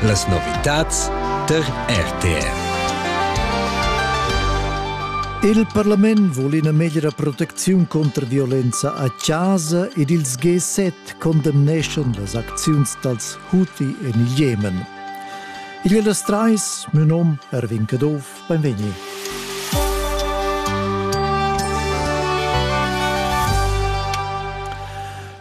Las novitads tar RTR. Il parlament vul ina meglra protecziun contra violenza a chasa ed ils G7 condemneschan las acziuns dals Houthi en il Jemen. Il las trais, mio nom Erwin Caduff, benvegni.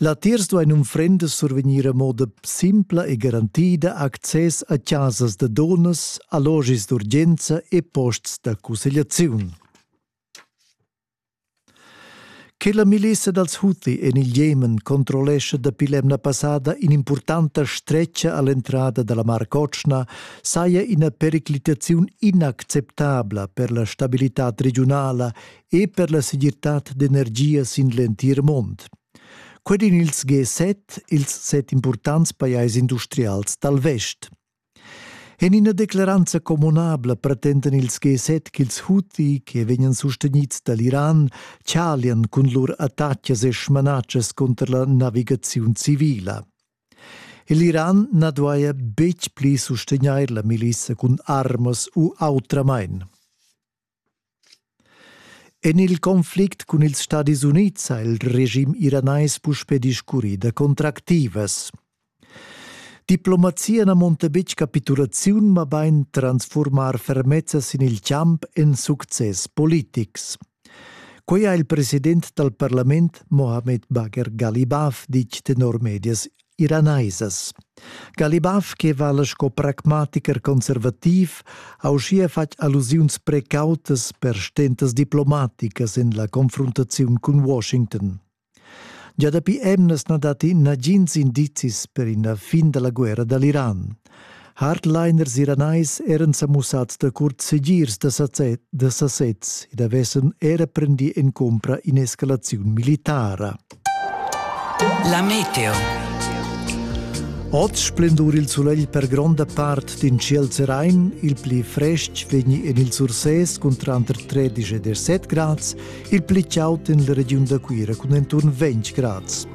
Latiers duain unfrendas survegnir a moda simpla e garantida access a chasas da dunnas, allogis d'urgenza e posts da cussegliaziun. Che la milissa dals Houthi en il Jemen controllescha dapi l'emna passada in'impurtanta stretga a l'entrada da la Mar Cotschna saja ina periclitaziun inacceptabla per la stabilitad regiunala e per la segirtad d'energia sin l'entir mond. Quei din ils G7, ils set impurtants pajais industrials dal vest. En ina declaranza communabla pretendan ils G7 ch'ils Houthi, che vegnan sustenids dall'Iran, chalian cun lur attacas e smanatschas cunter la navigaziun civila. L'Iran na duaja betg pli sustegnair la milissa cun armas u autramain. En il conflict cun ils Stadis Unids ha il regim iranais puspè discurrì da contractivas. Diplomazia na munta betg capitulaziun, mabain transfurmar fermezza sin il champ en success politics. Quei ha il president dal parlament Mohamed Bagher Galibaf ditg tenor medias iranaisas. Galibaf che vala sco pragmatiker conservativ ha uschia fatg allusiuns precautas per stentas diplomaticas en la confruntaziun cun Washington. Già dapi emnas na datti nagins indizis per ina fin da la guerra dall'Iran. Hardliners iranais eran sa mussats da curt segirs da sasez, da sasez ed avessen era prendì en cumpra in'escalaziun militara. La meteo. Oz splendur il sulegl per gronda part d'in ciel serain, il pli frestg vegni en il Sursès cun tranter 13 e 17 grads, il pli chaud en la regiun da Cuira cun enturn 20 grads.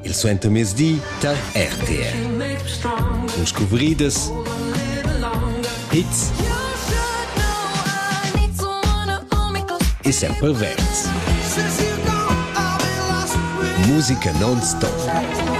Il suentermezdi tar RTR. Cun scuvridas, hits e sempre verds. Musica non stop.